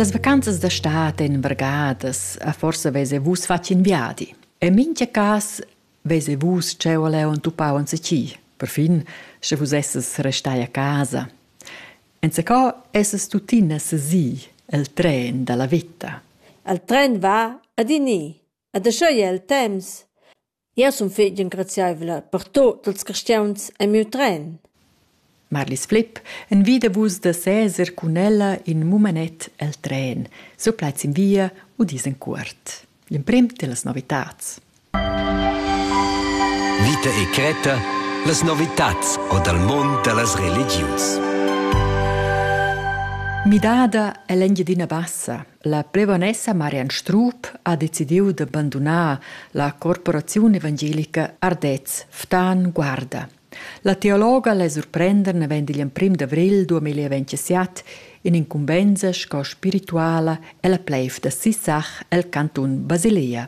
Las vacanzas da stad en bargadas a forsa vese vus fatg in viadi. En mincha cas vese vus cheu leu entupau en seci. Perfin sche vus esses restai a casa. Enzacò esses tuttina sesi el tren dalla vita. El tren va ad ini. Ed aschia ei el temps. Jeu sun fetg engraziaivla per tut ils carstgauns en miu tren. Marlis Flipp envida vus da seser cun ella in mumenet el tren. Sur plaids in via u dis en cuort. L'emprim dellas novitads. Vita e cretta, las novitads o dal mund da las religius. Midada è l'Engiadina Bassa, La plevonessa Marian Strup ha decidiu da bandunar la corporaziun evangelica Ardez Ftan Guarda. La teologa la surprender naven digl emprim d'avril 2027 in incumbensa sco spirituala ella pleiv da Sissach el cantun Basilea.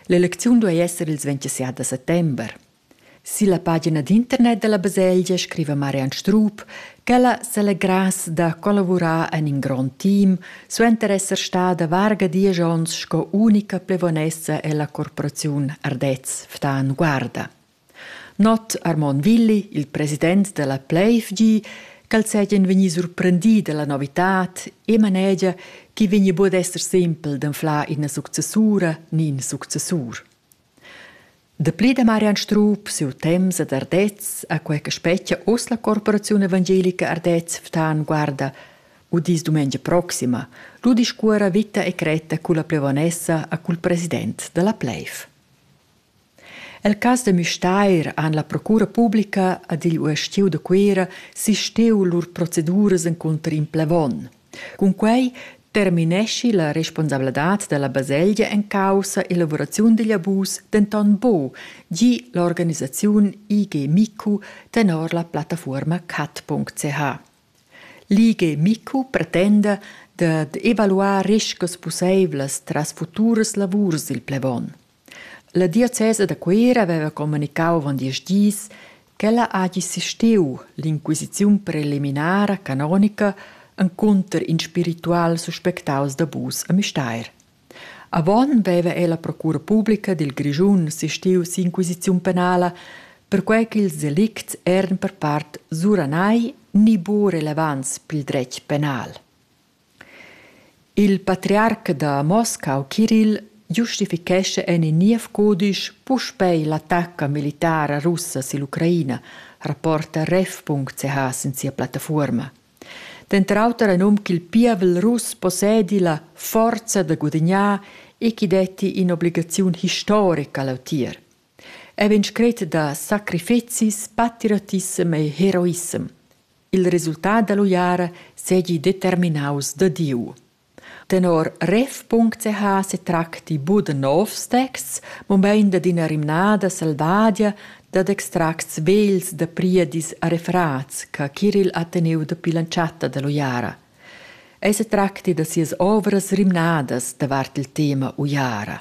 L'elecziun duei esser ils 27 da settember. Silla pagina d'internet dalla baselgia scriva Marian Strup ch'ella selegrass da collavurar en in grond team suenter esser stada varga diesch onns sco unica plevonessa ella corporaziun Ardez Ftan Guarda. Not Armon Willi, il president della Pleifg, ch'el seigien vegni surprendi dalla novitad e manegia che vegni bod esser sempel d'anflar ina successura ni in successur. Dapli da Marian Strup siu temps ad Ardez a quei che spetga oz la corporaziun evangelica Ardez Ftan guarda udis dumengia proxima lu discuora vita e cretta culla plevonessa a cul president dalla Pleiv. El cas de Müstair han la procura publica ad igl uestiu de Cuera sisteu lur proceduras encunter in plevon – Cunquei termineschi la responsabladad dalla baselgia en caussa elavuraziun digl abus denton buc, gi l'organisaziun IG Micu tenor la plattafuorma cat.ch. L'IG Micu pretenda dad evaluar riscas pusseivlas tras futuras lavurs dil plevon. La diocesa da Cuera haveva communicau avon diesch dis ch'ella hagi sisteu l'inquisiziun preliminara canonica encunter in spiritual suspectaus d'abus a Müstair. Avon veva ei la procura publica dil Grischun sisteu si'inquisiziun penala perquei ch'ils delicts eran per part suranai ni buca relevants pil dretg penal. Il patriarc da Moscau Kirill giustifichescha en in niev cudisch puspei l'attacca militara russa sill'Ucraina, rapporta ref.ch sin sia plattafuorma. Denter auter ha num ch'il pievel russ possedi la forza da gudignar e ch'i detti in'obligaziun historica leutier. Ei vegn scret da sacrifizis, patriotissem e heroissem. Il resultat dall'uiara seigi determinaus da Diu. Tenor ref.ch setracti buc da novs texts, mobein dad ina rimnada selvadia dad extracts vegls da priedis a refrats che Kiril ha teniu dapi l'entschatta dall'uiara. Ei setracti da sias ovras rimnadas davart il tema uiara.